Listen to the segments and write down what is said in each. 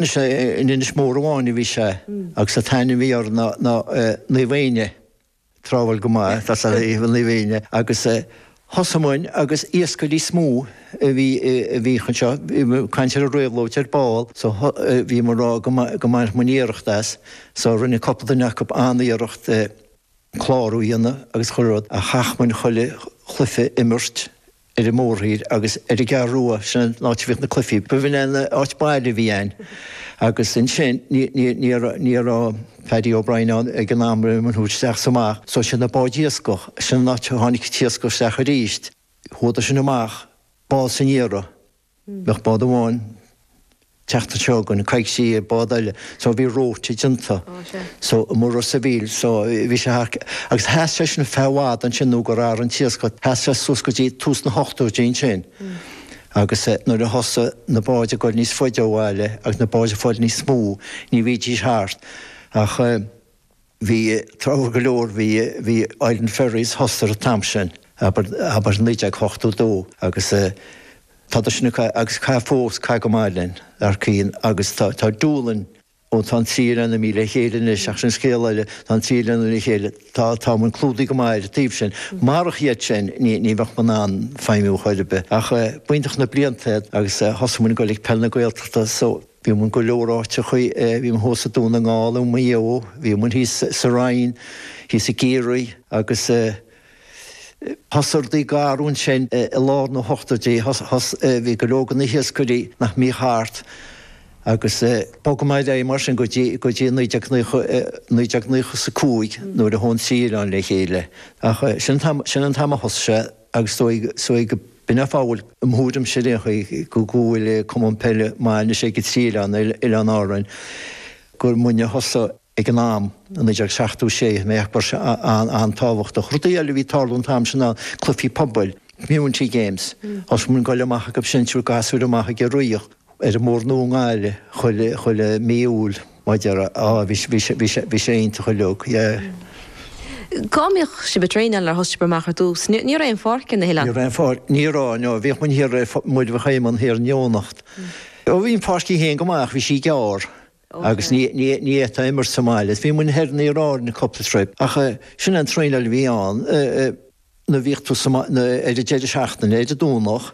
Anois in Inis Mór amháin a bhí sé agus an t-ainm a bhí air ná Naomh Éinne. Tráthúil go maith tá sé i Naomh Éinne agus thosaigh muinn agus iascairí is mó a bhí a bhíodh anseo, bhí muid ag caint ar an réabhlóid ar ball so bhí muid ag rá go maith go mbainfeadh muinn iarracht as so rinne cúpla duine acu an-iarracht, clárú a dhéanamh agus chuile rud ach chaith muinn chuile chluiche imirt ar an mórthír agus ar an gCeathrú Rua, sin an áit a bhíodh na cluichí. Ba mhinic an áit baile a bhí ann agus ansin ní raibh Paddy O'Brien ann ag an am le muinn a thabhairt isteach is amach, so sé na báid iascach, sin an áit a tháinig an t-iascach isteach arís. Chuadar sin amach bás aniar. Bheadh bád amháin an tseachtain seo chugainn, coicís bád eile, so bhí rota déanta. So i Ros an Mhíl, so bhí sé thar, agus sheas sé sin feadh i bhfad ansin nó gur athraigh an t-iascach, sheas sé suas go dtí tús na hochtóidí ansin. Agus nuair a thosaigh na báid ag goil níos faide ó bhaile agus na báid ag fáil níos mó, ní bhídís thart ach. Bhí tráthúil go leor, bhí, bhí Island Ferries, thosaigh an t-am sin, abair, abair naoi déag ochtó dó agus tádar sin, agus ag caitheamh fós, ag caitheamh go maith linn, dar cinn agus tá, tá Doolin, ó tá an trí oileán in éindí le chéile anois ach sin scéal eile, tá an trí oileán le chéile, tá, tá muid clúdaithe go maith ar an taobh sin. Marach iad sin ní, ní bheadh muid in ann feidhmiú chor ar bith. Ach b'iontach na blianta iad agus thosaigh muid ag goil ag Peil na Gaeltachta so, Bhí muid i go leor áiteachaí, bhí muid thuas i Dún na nGall, i Maigh Eo, bhí muid thíos sa Rinn, thíos i gCiarraí agus thosaigh rudaí ag athrú ansin i lár na hochtóidí, bhí go leor de na hiascairí nach mbíodh thart agus bhog mé liom mar sin go dtí naoi déag naocha, naoi déag naocha is a cúig nuair a chuaigh an trí oileán le chéile. Ach sin an t-am, sin an t-am a thosaigh sé. Agus is dóigh go b'in é an fáth a bhfuil, i mo thuairimse ar aon chaoi, go go bhfuil Cumann Peile maith anois ag 3 oileán Oileáin Árann gur muidne a thosaigh ag an am, i 1976, mé ag ceapadh go raibh sé an-tábhachtach. Rudaí eile a bhí ag tarlú an t-am sin ná cluichí pobail, community games, is muinn ag goil amach agaibhse ag tabhairt gasúir amach ag rith, ar an mBóthar Nua i nGaillimh chuile mí Iúil mar a déarfá bhí sé iontach uilig yeah. Cá mbíodh sibh ag traenáil nuair a thosaigh sibh amach ar dtús? Ní raibh aon pháirc ina hoileán? Ní raibh aon pháirc, ní raibh, no, bhíodh muid thiar, muid a bheadh game ann thiar in Eoghanacht. Bhí an pháirc í féin go maith ach bhí sí gearr. Agus ní fhéadfá imirt sa mbaile. Bhí muinn thoir in Iaráirne cupla troip, ach sin é an traenáil a bhí ann. Nuair bhíodh tú sa, ar an deireadh seachtaine, ar an Domhnach,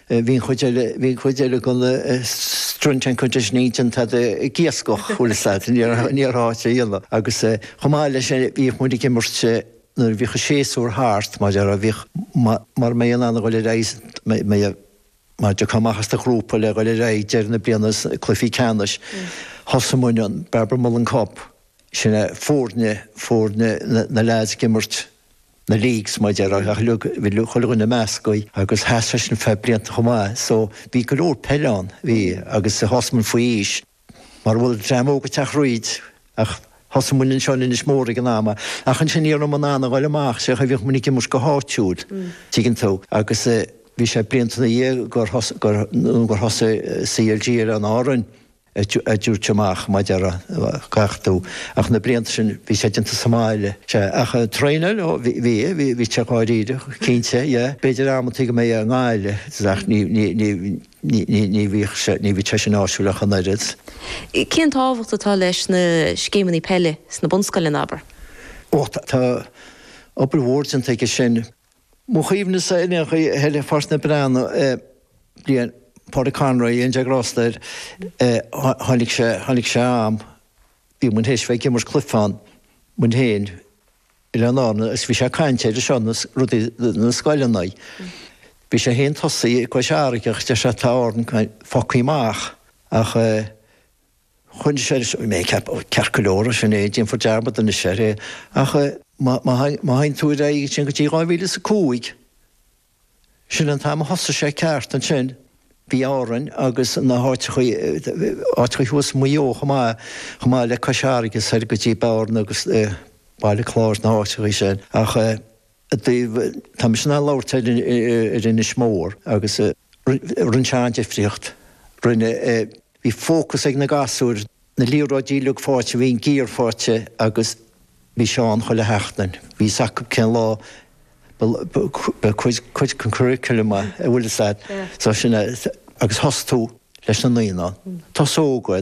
bhí an chuid eile, bhí an chuid eile go na strength and conditioning déanta ag iascach, bhfuil a fhios agat, ní raibh áit a dhéanamh. Agus chomh maith le sin, bhíodh muinn ag imirt nuair bhíodh an séasúr thart, mar a déarfá, bhíodh, mar mé in ann a dhul ar aghaidh, mé a, Mar go dtiocfadh an méid sin de ghrúpa le dhoil ar aghaidh deireadh na bliana is na cluichí ceannais, thosaigh muinn an Barbara Mullen Cup, sin é foirne, foirne na leaids ag imirt na leagues mar a deir, uilig, chuile dhuine measctha agus sheas sé sin feadh blianta chomh maith. So, bhí go leor peil ann, bhí, agus thosaigh muid faoi aois. Mara bhfuil dream óg ag teacht thríd, ach thosaigh muinn anseo in Inis Mór ag an am, ach ansin iarradh an an a ghoil amach, sea, bhíodh muinn ag imirt go háitiúil, tuigeann tú, agus bhí sé blianta ina dhiaidh gur thosaigh, gur, nó gur thosaigh CLG ar Árainn a thabhairt amach, mar a déarfadh tú, ach na blianta sin bhí sé déanta sa mbaile, sea, ach traenáil, ó, bhí, bhí, bhí, bhí, bhí sé dáiríre, cinnte, yeah, b'fhéidir amantaí go mbeadh i nGaillimh, ach ní, ní, ní, Ní bhíonn sé sin áisiúil ach an oiread. Cén tábhacht atá leis na scéimeanna peile sna bunscoileanna, abair? Ó, tá obair mhór déanta aige sin. Mo chuimhne-sa, in aon chor, thíos i bPáirc na Breathnach bliain, Pádraic Conroy, go ndéana Dia grásta air, tháinig sé ann, bhí muid théis bheith ag imirt cluife ann, muid fhéin, Oileáin Árann agus bhí sé ag caint ar seo na rudaí na scoileanna. Bhí sé fhéin tosaithe i gCois Fharraige agus deir sé tá Árainn fágtha amach ach chuir sé, arsa mé, ag ceapadh ceart go leor sin é déanfar dearmad anois air ach má má má théann tú ar aghaidh ansin go dtí 2005 Sin an t-am a thosaigh sé ceart ansin. Bhí Árainn agus na háiteachaí thuas Maigh Eo chomh maith, chomh maith le Cois Fharraige soir go dtí Bearna agus Baile Cláir na háiteachaí sin. Ach i dtaobh, tá mise in ann labhairt ar ar Inis Mór agus rinne sé an-difríocht. Rinne, bhí fócas ag na gasúir Na liathróidí uilig fáighte, bhí an gear fáighte agus bhí Seán chuile sheachtain, bhí fhios acu cén lá, cuid den curriculum an bhfuil fhios a'd, so sin é agus thosaigh tú leis na naíonáin, tosóga,